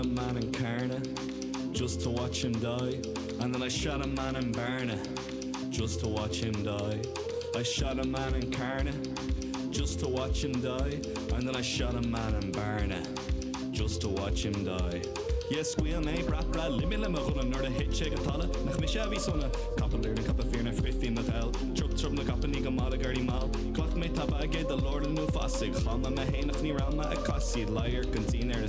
a man in Carna just to watch him die and then I shot a man in Bearna just to watch him die I shot a man in Carna just to watch him die and then I shot a man in Bearna just to watch him die Yeah scaoil mé brat brat limit le mo ghunna nuair a thit sé go talamh nach mise a bhí sona Capall Doireann Capall Fírinne Frithfhionn na gheal Trup trup na gcapainí go mall i gCarraí Mall Ghlac mé tapa aige de lorlann nó fasaigh Chlann mé mé féin ach ní raibh mé ag casaoid Leighearc an tSín ar a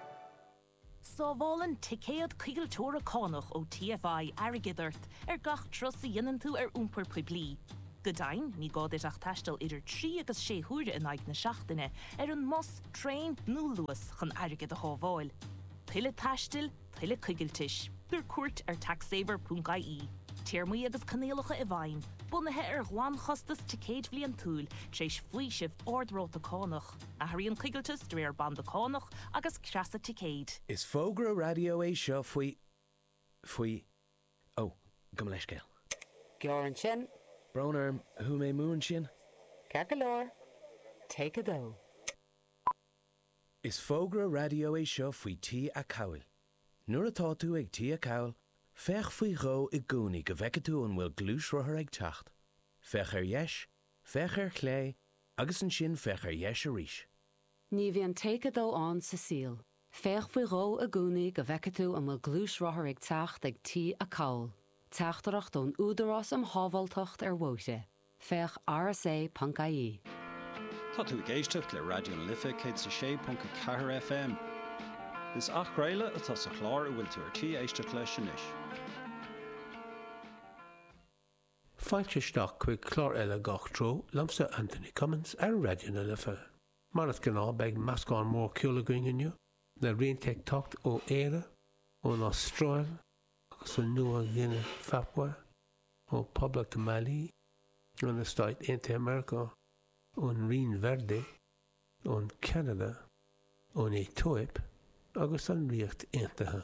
Sábhálann ticéad coigilteora cánach ó TFI airgead ort ar gach turas a dhéanann tú ar iompar poiblí. Go deimhin, ní gá duit ach taisteal idir trí agus sé huaire in aghaidh na seachtaine ar an mbus, traein nó Luas chun airgead a shábháil. Tuilleadh taistil, tuilleadh coigiltis. Tabhair cuairt ar taxsaver.ie. Téarmaí agus coinníollacha i bhfeidhm, bunaithe ar ghlanchostas ticéad bliantúil, tar éis faoiseamh ard-ráta cánach. Athraíonn coigilteas de réir banda cánach agus creasa ticéid. Is fógra raidió é seo faoi, faoi, ó, gabh mo leithscéal. Gearr ansin. Brón orm, chuaigh mé amú ansin. Ceart go leor, take a dó. Is fógra raidió é seo faoi T-acomhail. Nuair atá tú ag T-acomhal, féach faoi dhó i gcónaí go bhfeicfidh tú an bhfuil gluaisrothar ag teacht. Féach ar dheis, Féach ar chlé agus ansin féach ar dheis arís. Ní bhíonn take a dó ann sa saol. Féach faoi dhó i gcónaí go bhfeicfidh tú an bhfuil gluaisrothar ag teacht ag T-acomhal. Teachtaireacht ón Údarás um Shábháilteacht ar Bhóithre. Féach rsa.ie. Tá tú ag éisteacht le Raidió na Life 106.4 FM. Is athchraoladh atá sa chlár a bhfuil tú ar tí éisteacht leis anois. Fáilte isteach chuig clár eile Gach Treo liomsa, Anthony Cummins, ar Raidió na Life. Mar is gnáth, beidh meascán mór ceoil againn inniu, le rianta ag teacht ó Éire, ón Astráil agus ó Nua-Ghuine Phapua, ó Poblacht Mali, ó na Stáit Aontaithe Meiriceá, ón Rinn Verde, ón Ceanada, ón Aetóip agus an Ríocht Aontaithe.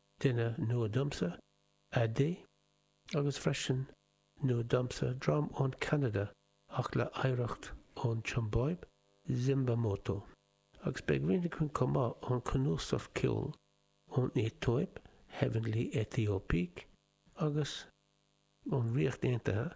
Duine nua domsa, AD, agus freisin nua domsa, dream ón Ceanada ach le hoidhreacht ón tSiombáib, Zimbamoto. Agus beidh rian againn chomh maith ón cnuasach ceoil ón Aetóip, Heavenly Ethiopiques, agus ón Ríocht Aontaithe,